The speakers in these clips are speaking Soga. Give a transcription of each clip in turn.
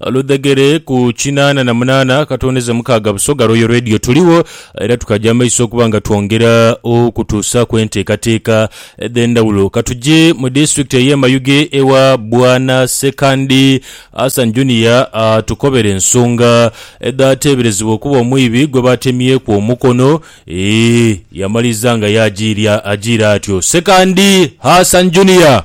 Oludhegere ku kinaana na munaana akatondeza mukaaga Busoga Royal Radio tuligho era tukaja amaiso okuba nga twongera okutuusaaku enteekateeka edh'endhawulo. Ka tuje mu disitulikiti ey'e Mayuge ewa Bwana Ssekandi Hassan Junior atukobere ensonga edhateeberezebwa okuba omwibi gwe baatemyeku omukono. Eeh yamaliza nga yaajiira ajiira atyo. Ssekandi Hassan Junior!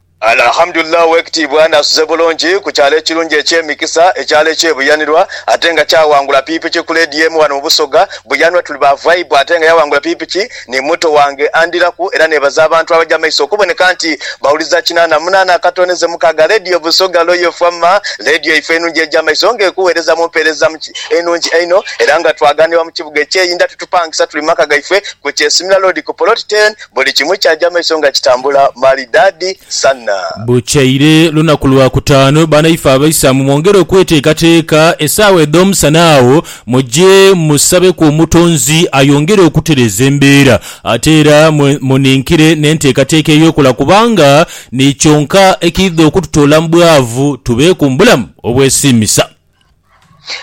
Alhamdulillah Owekitiibwa n'asuze bulungi ku kyalo ekirungi eky'emikisa, ekyalo eky'e Buyanirwa ate nga kyawangula pikipiki ku leedi y'emu wano mu Busoga. Buyanwa tuli ba vaibu ate nga yawangula pikipiki ni muto wange andiraku era nebaza abantu abaja maiso okuboneka nti bawuliza kinaana munaana akatoneze mukaaga leediyo Busoga Loyal Fm leediyo ife enungi eja maiso nga ekuwereza mu mpereza enungi einho era nga twaganibwa mu kibuga eky'e Inda titupangisa tuli maka gaife ku Kyesimira Loodi ku poloti ten Buli kimu kyaja maiso nga kitambula malidaadi sana. Bukeire lunaku lwa kutaanu, banaife Abaisamu mwongere okweteekateeka, esaawa edh'omusana agho muje musabeku Omutonzi ayongere okutereeza embeera. Ate era muninkire n'enteekateeka ey'okola kubanga ni kyonka ekiidha okututoola mu bwavu tubeeku mu bulamu obwesiimisa.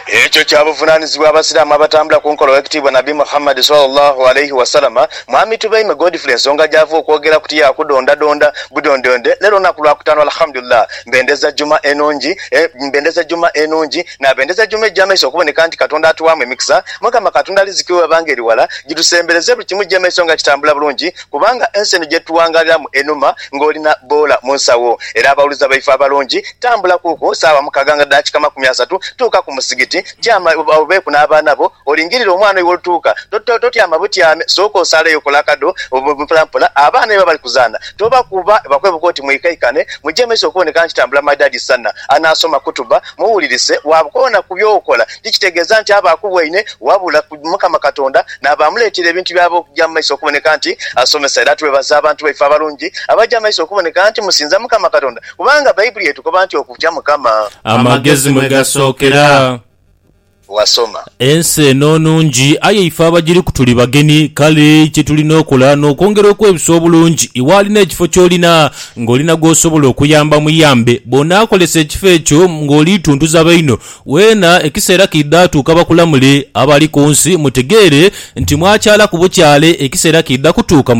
Ekyo kya buvunaanizibwa Abasiraamu abatambula ku nkola Owekitiibwa Nabbi Muhammad, swalla Llahu alaihi wasallam, Mwami Tubeime Godfrey ensonga gy'ava okwogera ku tiya kudondadonda budondonde. Leero lunaku Lwakutaano Alhamdulillah. Mbendeza Juma enungi e, mbendeza Juma enungi n'abendeza Juma egya maiso okuboneka nti Katonda atuwaamu emikisa. Mukama Katonda riziki we bwebanga eri wala, gidusembereze buli kimu gye maiso nga kitambula bulungi. Kubanga ensi eno gye tuwangaaliramu enuma ng'oli na boola mu nsawo. Era abaghuluza baife abalungi, tambula kuuku saawa mukaaga nga daakika makumi asatu, tuuka ku musigiti, tyama obeeku n'abaana bo, olingirire omwana oyo w'olituuka. Totyama butyame, sooka osaaleyo, kola akadho mpolampola. Abaana ni baba bali kuzaana, tobakuba, bakwebuka oti mwikaikane, muje mu maiso okuboneka nti tambula my dad is Sanna, anaasoma khutuba. Muwulirise, bw'akoona ku by'okola, tikitegeeza nti aba akubwaine, wabula ku Mukama Katonda n'abaamuleetera ebintu by'aba okugya mu maiso okuboneka nti asomesa. Era twebaza abantu baife abalungi abagya mu maiso okuboneka nti musinza Mukama Katonda, kubanga Baibuli etukoba nti okutya Mukama. Amagezi mwe gasookera. wasoma. Ensi eno nungi, aye ife abagiriku tuli bagenhi. Kale kye tulina okola n'okwongera okwebisa obulungi. Iwe alina ekifo ky'olina ng'olina gw'osobola okuyamba muyambe. Bw'onaakolesa ekifo ekyo ng'oli tuntuza baino, weena ekiseera kiidha tuuka bakulamule. Abali ku nsi mutegeere nti mwakyala ku bukyale, ekiseera kiidha kutuuka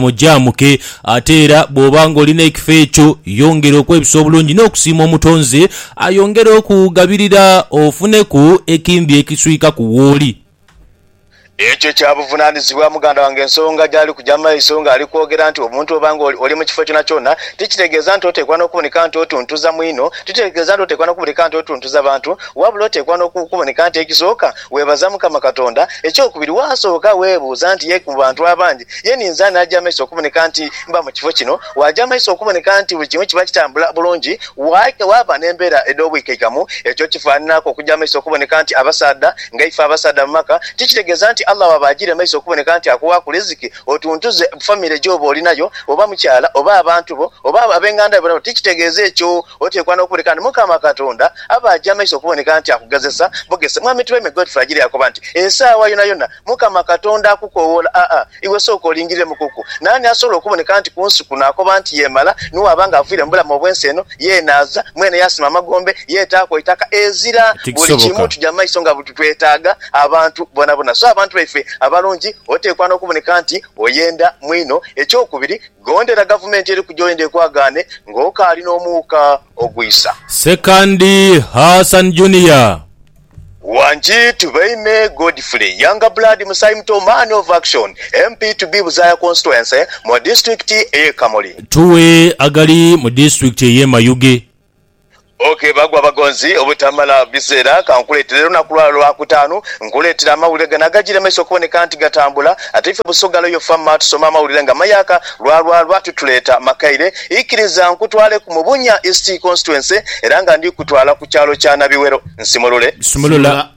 mujaamuke. Ate era bw'oba ng'olina ekifo ekyo, yongera okwebisa obulungi n'okusiima Omutonzi Ayongere okugabirira ofuneku ekindhi ekiswikaku wooli. Ekyo kya buvunaanizibwa muganda wange. Ensonga gy'ali kugya mu maiso ng'ali kwogera nti obuntu oba ng'oli mu kifo kyonakyona tikitegeeza nti oteekwa n'okuboneka nti otuntuza mwino. Tikitegeeza nti oteekwa n'okuboneka nti otuntuza bantu, wabula oteekwa n'okuboneka nti ekisooka weebaza Mukama Katonda. Ekyokubiri, waasooka weebuuza nti, Ye mu bantu abangi Ye ni nze anaaja amaiso okuboneka nti mba mu kifo kino. Waaja amaiso okuboneka nti buli kimu kiba kitambula bulungi, waika waaba n'embeera edh'obwikaikamu. Ekyo kifaananaaku okuja amaiso okuboneka nti abasaadha, nga ife abasaadha mu maka, tikitegeeza nti Allah waaba ajiire amaiso okuboneka nti akuwaaku liziki otuntuze famire gy'oba oli nayo, oba mukyala, oba abantu bo, oba ab'enganda yo boona. Tikitegeeza ekyo. Oteekwa n'okuboneka nti Mukama Katonda aba aja amaiso okuboneka nti akugezesa bugezesa. Mwami Twaimegood Fragile yaakoba nti, Esaawa yonayona, Mukama Katonda akukoowoola, aa, iwe sooka olingirire mu kuku. Naani asobola okuboneka nti ku nsi kuno akoba nti yeemala, ni bw'aba nga aviire mu bulamu obw'ensi eno? Yee, naaza, mwene yaasima amagombe, yeetaaku eitaka. Ezira! Buli kimu Tikisoboka. kija mu maiso nga buli twetaaga abantu bonabona. So abantu baife abalungi, oteekwa n'okuboneka nti oyenda mwino. Eky'okubiri, gondera gavumenti eri ku gy'oyenda ekwagaane ng'okaali n'omuuka ogwisa. Ssekandi Hassan Junior. Wangi Tubeime Godfrey, Younger Blood Musaayi Muto, Man of Action, MP to be Buzaaya Constituency, mu Disitulikiti ey'e Kamuli. Tuwe agali mu disitulikiti ey'e Mayuge. Ok bagwa bagonzi obutamala biseera kankuleetere olunaku lwa lwakutaanu nkuleetere amawulire gano agajiire mumaiso okuboneka nti gatambula ate ife Busoga Loyal Farmer tusoma amawulire nga mayaaka lwa lwa lwa tutuleeta makaire ikiriza nkutwaleku mu Bunya East Constituency era nga ndikutwala ku kyalo kya Nabiwero Nsimulule. Sumulula.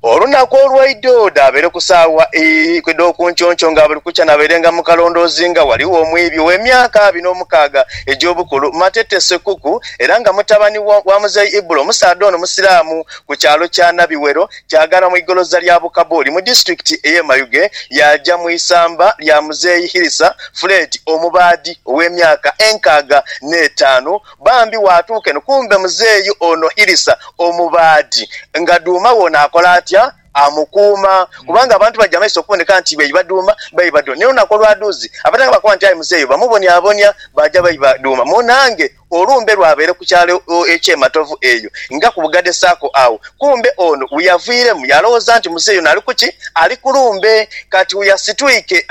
Olunaku olwaidho dhabaire ku saawa ii edh'okunkyonkyoo nga buli kukya nabairenga mu kalondoozi nga ghaligho omwiibi ow'emyaka abiri n'omukaaga egy'obukulu, Matete Sekuku, era nga mutabani wa Muzei Ibula. Omusaadha ono Musiraamu ku kyalo kya Nabiwero kyagana mu igoloza lya Bukaboli mu disitulikiti ey'e Mayuge yaaja mu isamba lya Muzei Hirisa Fred omubaadhi ow'emyaka enkaaga n'etaanu Bambi waatuuka eno kumbe muzeeyi ono Irisa omubaadhi nga dhuuma we ono akola atya? Amukuuma kubanga abantu baja mumaiso okuboneka nti baiba dhuuma baiba dho n'olunaku olwadhuuzi abatanga bakoba nti aye muzeeyi bamubonyabonya baja baiba dhuuma munaange olumbe lwabaire ku kyalo eky'e Matovu eyo nga ku Bugade Sacco agho kumbe ono weyaviiremu yalowooza nti muzeeyi ono ali ku ki? Ali ku lumbe kati weyasitwike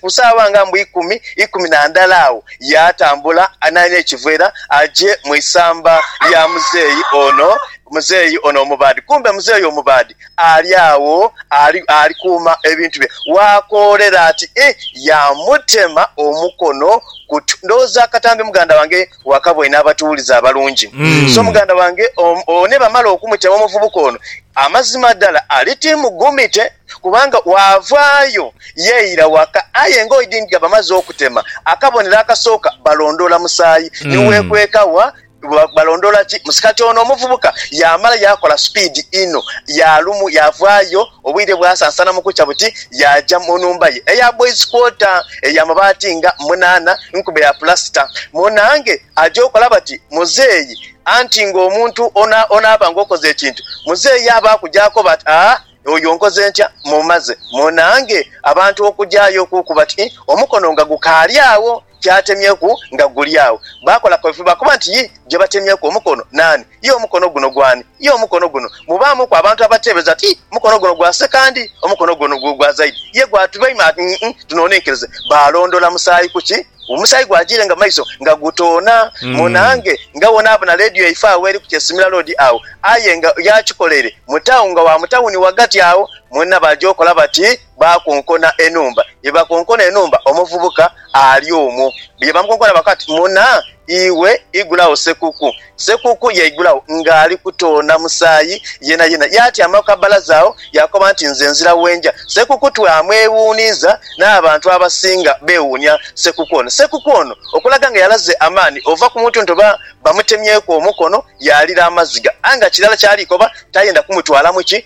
ku saagha nga mbu ikumi ikumi na ndala agho Yaatambula anaaine ekiveera aje mu isamba lya muzeeyi ono, muzeeyi ono omubaadhi. Kumbe muzeeyi omubaadhi ali agho ali, ali kuuma ebintu bye. Waakoolera ati, Ih, yaamutema omukono ku twe. Ndowooza akatambi muganda wange wakaboine abatuwulize abalungi. So muganda wange, o, o, nibamala okumutema omuvubuka ono, amazima dhala ali ti mugumite. Kubanga waavaayo yeeira waka, aye ng'oidhi nga bamaze okutema akabonero akasooka balondoola musaayi ni weekweka wa? Balondoola ki musaayi? Kati ono omuvubuka yaamala yaakola supiidi inho, yaalumu yaavaayo obwire bwasansana mu kukya buti yaaja mu nhumba ye eya boys quarter eya mabaati nga munaana nkube ya pulasita. Munaange aja okola bati muzeeyi anti ng'omuntu onaaba ng'okoze ekintu muzeeyi aba akuja akoba ati, Aa! Oyo nkoze ntya? Mmumaze. Munaange abantu okugyayo okuuku bati omukono nga gukaali agho ky'atemyeku nga guli agho. Baakola kwefuba okuba nti yi gye batemyeku omukono naani? Ye omukono guno gwani? Ye omukono guno? Mubaamuku abantu abateebeza ti mukono guno gwa Sekandi, omukono guno gwa Zaidi, ye gwa Tubeimana, ii, tunonenkerize. Baalondola musaayi ku ki? Omusaayi gwajiire nga maiso nga gutoona mu nange ngabonabona leediyo yaife agho eri ku Kyesimira Road agho aye nga yakikoleire mu town nga wa mu tawuni ghagati agho mwena bajokola bati bakonkona enhumba. Byebakonkona enhumba omuvubuka ali omwo byebamukonkona bakoba bati mwna iwe igulagho sekuku. Sekuku yaigulagho ng'ali kutoona musaayi yenayena, yaatyama ku kabbalaza agho yaakoba nti, Nze nzira we nja. Sekuku twamwewuuniiza, n'abantu abasinga beewuunia Sekuku ono. Sekuku ono okulaga nga yalaze amaani ova ku muntu nti oba bamutemyeku omukono yaalira amaziga aye nga kirala ky'ali koba tayenda kumutwalamu ki.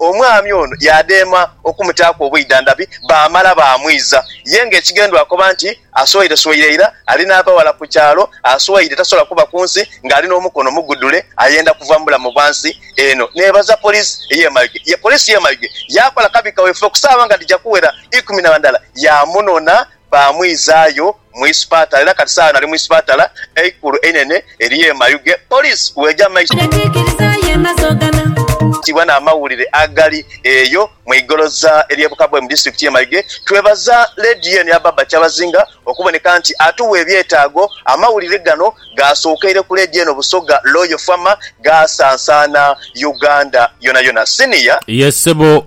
Omwami ono yaadema okumutaaku obwidhandhabi baamala baamwiza. Ye ng'ekighendwa akoba nti, Asweiresweire ira, ali n'abaghala ku kyalo, aswaire tasobola kuba ku nsi ng'ali n'omukono mugudhule, ayenda kuva mu bulamu bwa nsi eno. Neebaza poliisi ey'e Mayuge. Ye poliisi y'e Mayuge yaakola kabi kawefube ku saawa nga dhija kuwera ikumi na ndhala yaamunona Baamwizaayo mu isipatala era kati saagha ali mu isipatala eikulu einene ery'e Mayuge, poliisi bw'eja mu maiso n'okutibwa n'amawulire agali eyo mu igoloza ery'e Bukabwe mu disitulikiti y'e Mayuge. Twebaza leediyo eno eya Baba Kyabazinga okuboneka nti atuwa ebyetaago. Amawulire gano gaasookeire ku leediyo eno Busoga Loyal FM, gaasansaana Uganda yonayona. Senior. Ye ssebo.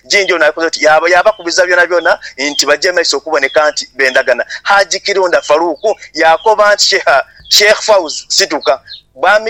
Jinja ono akoze oti yaaba yaabakubiza byonabyona nti baje maiso okuboneka nti bendagana. Haji Kirunda Farouk yaakoba nti Sheikh Fauzi Situka bwami.